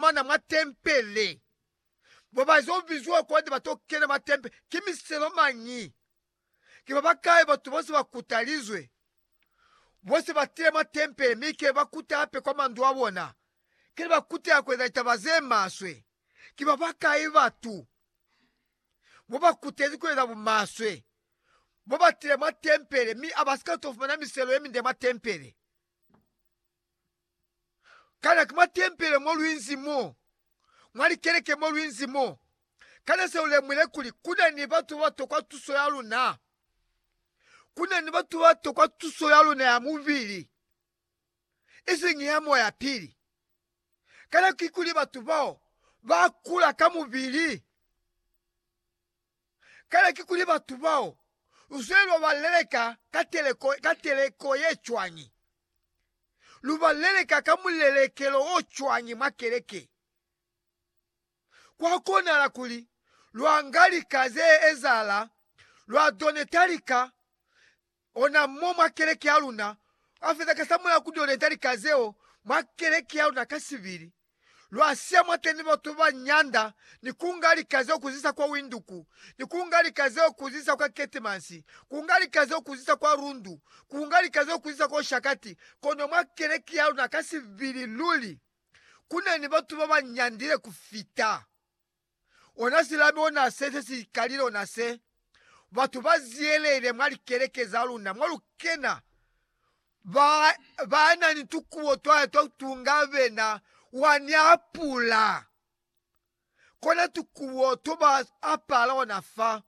mana mwa tempele. Bo ba zwa bizwa kwande ba to kena mwa tempele ki miselo mañi? Ki ba bakai batu bose ba kutalizwe? Bo se ba tile mwa tempele mi ke ba kuta hape kwa mandu a bona. Ki ne ba kutela ku eza litaba ze maswe. Ki ba bakai batu bo ba kutezi ku eza bumaswe bo ba tile mwa tempele mi a ba si ka to fumana miselo ye minde mwa tempele? Kana ki mwa tempele mo lwinzi mo? Mwa likeleke mo lwinzi mo? Kana se ulemwile kuli kuna ni batu baba tokwa tuso ya luna? Kuna ni batu baba tokwa tuso ya luna ya mubili, isiñi ya moya pili. Kana kikuli batu bao ba kula ka mubili? Kale kikuli batu bao luzwile lwa ba leleka ka teleko, ka teleko ye cwañi? Lu ba leleka ka mulelekelo o cwañi mwa keleke? Kwa konahala kuli lwa nga lika ze ezahala, lwa doneta lika, Ona mo mwa keleke ya luna a feza ka sa mulao ku dio leta lika zeo mwa keleke ya luna ka sibili. Lwa siya mwateni batu ba nyanda ni ku nga lika zeo ku zisa kwa Windhoek, ni ku nga lika zeo ku zisa kwa Keetmans, ku nga lika zeo ku zisa kwa Rundu, ku nga lika zeo ku zisa kwa Oshakati. Kono mwa keleke ya luna ka sibili luli ku na ni batu ba ba nyandile ku fita. ona silabi ona se se si kalile ona se, batu ba ziyelele mwa likeleke za luna mo lu kena, ba, ba na ni tukubo twa twa kutunga bena, wa ni apula. Kona tukubo to ba apala ona fa.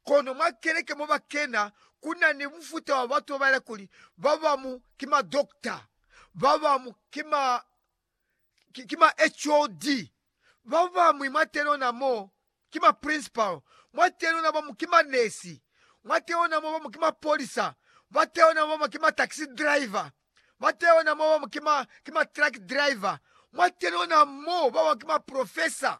Kono mwa keleke mo ba kena, ku na ni mufuta wa batu ba ba ela kuli ba bamu ki madokota, ba bamu ki ma, ki, ki ma HOD, ba bañwi mwateni lona mo ki maprinsipalo, mwateni lona ba bañwi ki manesi, mwateni lona mo ba bañwi ki mapolisa, bateni lona mo ba bañwi ki ma taxi driver, bateni lona mo ba bañwi ki ma, ki ma truck driver, mwateni lona mo ba bañwi ki maprofesa.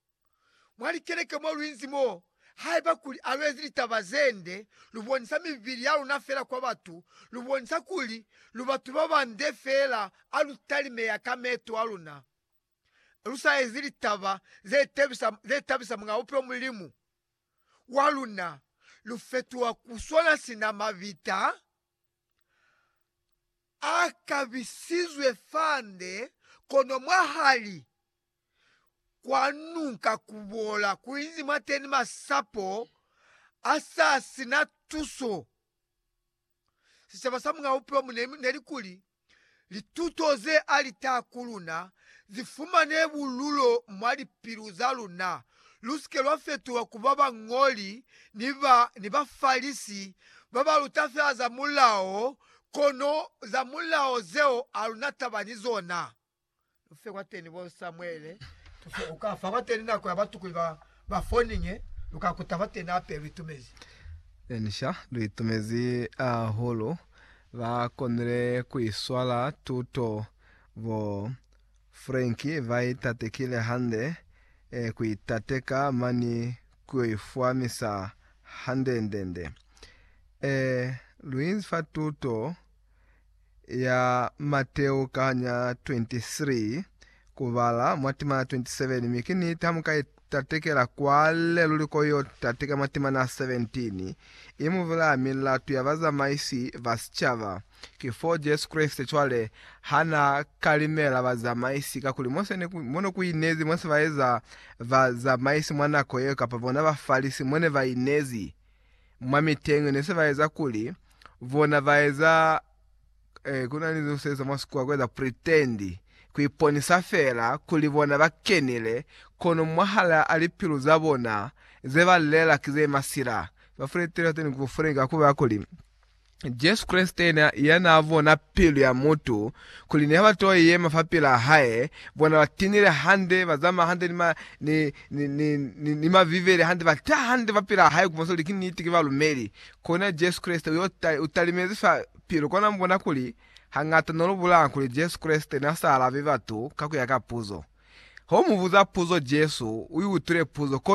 mwa likeleke mo lu inzi mo, haiba kuli a lu ezi litaba ze nde, lu bonisa mibili ya luna fela kwa batu, lu bonisa kuli lu batu ba bande fela ha lu talimeya ka meeto a luna, lu sa ezi litaba ze tabisa, ze tabisa Muñ'a Bupilo Mulimu wa luna, lu fetuha ku swana sina mabita a kabisizwe fande, kono mwahali. kwa nunka kubola kuinzi mwateni masapo asasina tuso. Sicaba sa mwa bupilo mu ne nelikuli lituto ze alita kuluna zifumane bululo mwa lipilu zaluna, lusike lwa fetulwa kuba bañoli ni ba ni Bafalisi babaluta fela za mulao, kono za mulao zeo aluna taba ni zona. Ufe kwateni bo Samuele tufe uka fa kwateni nako ya batukuli ba ba foninge luka kuta kwateni hape luitumezi. Enisha luitumezi ahulu ba konile kuiswala tuto bo Frank ba itatekile hande e kuitateka mani kuyoifwamisa hande ndende e luinzi fa tuto ya Mateo kahanya 23 kubala mwa timana 27 mi ki niti hamuka itatekela kwale luli ko yo tateka mwa timana 17 imubulaya milatu ya bazamaisi ba sicaba ki fo Jesu Kreste cwale hana kalimela bazamaisi kakuli Mose ne mo ne ku inezi mose baeza bazamaisi mwa nako yeo kapa bona Bafalisi mo ne ba inezi mwa miteñi ne se ba eza kuli bona ba eza eh, ku na ni ze se eza mwa sikuwa ku eza pretend ku iponisa fela kuli bona ba kenile kono mwahala a lipilu za bona ze ba lela ki ze masila ba fretela teni ku fretela ku ba kuli Jesu Kreste yena ya n'a bona pilu ya mutu, kuli niha ba t'o yema fapil'a hae, bona ba tinile hande, ba zamaya hande, ni, ni, ni, ni, ni, ni mabivele hande, ba ta hande fapil'a hae, ku bonisa kuli ki niti, ki balumeli. Kona Jesu Kreste u y'o, u talimezi fa pilu. Kona mu bona kuli hañata no lu bulanga kuli Jesu Kreste n'a sa alabi batu ka ku ya ka puzo. Ho mu buza puzo, Jesu u i utwile puzo, kono.